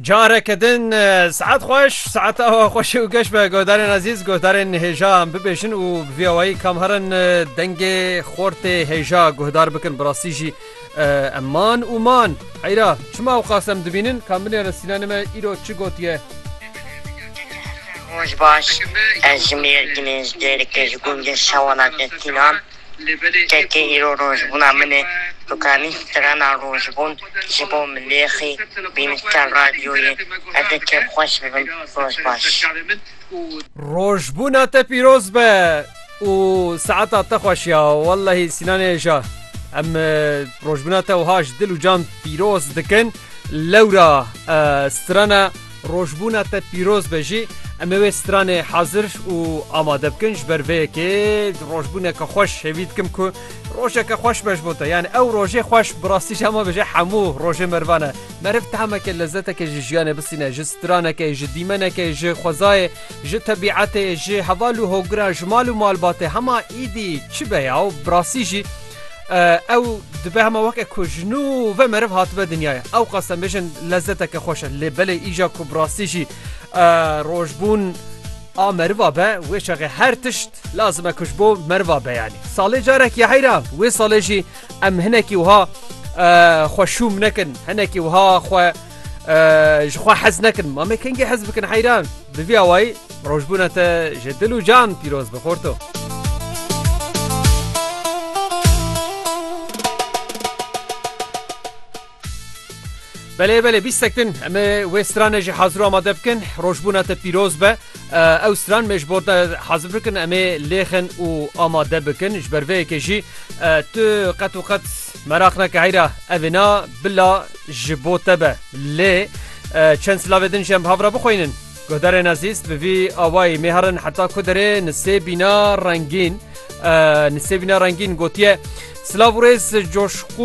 Careke din saet xweş saet awa xweşê û geş be godarên ezîz godarên hêja em bibêjin û vî awayî kam herin dengê xortê hêja guhdar bikin bi rastî jî em man û man heyra çima ew qas em dibînin kam binêrin sînanê me îro çi gotiye Roj baş ez ji mêrdinê ji dêrikê ji gundê şewana te tînan Kekê îro rojbûna min e. Tu kanî strana rojbûn ji bo milêxî bînîşta radyoyê hete kêm xweş bibin. Roj baş. Rojbûna te pîroz be û saeta te xweş ya wellehî Sînanê Eja em rojbûna te wiha ji dil û can pîroz dikin lewra strana Rojbûna te pîroz be jî em ê wê stranê hezir û amade bikin. Ji ber vê yekê rojbûneke xweş hêvî dikim ku rojeke xweş be ji bo te. Yanî ew rojê xweş bi rastî jî hema bêje hemû rojê merivan e. Meriv tahmeke lezeteke ji jiyanê bisîne, ji stranekê, ji dîmenekê, ji xwezayê, ji tebîetê, ji heval û hogiran, ji mal û malbatê hema êdî çi be ya û bi rastî jî ew dibe hema weke ku ji nû ve meriv hatibe dinyaya ew qasem bêjin lezzeteke xweş e lê belê îja ku bi rastî jî rojbûn a meriva be wê çaxê her tişt lazim e kuş bo meriva beyanî salê carek ya heyra wê salê jî em hinekî wiha xweşûm nekin hinekî wiha xwe ji xwe hez nekin mamê kengê hez bikin heyran bi vî awayî Rojbûna te ji dil û can pîroz bi xorto. Belê belê bîst sektin em ê wê stranê jî hazir amade bikin rojbûna te pîroz be ew stran me ji bo te hazir bikin em ê lêxin û amade bikin ji ber vê yekê jî tu qet û qet meraq neke heyra evê na bila ji bo te be lê çend silavê din ji em havra bixwînin Guhdarên ezîz bi vî awayî mêherin heta ku derê Nisêbîna Rengîn Nisêbîna Rengîn gotiye Silav û rêz coşqûn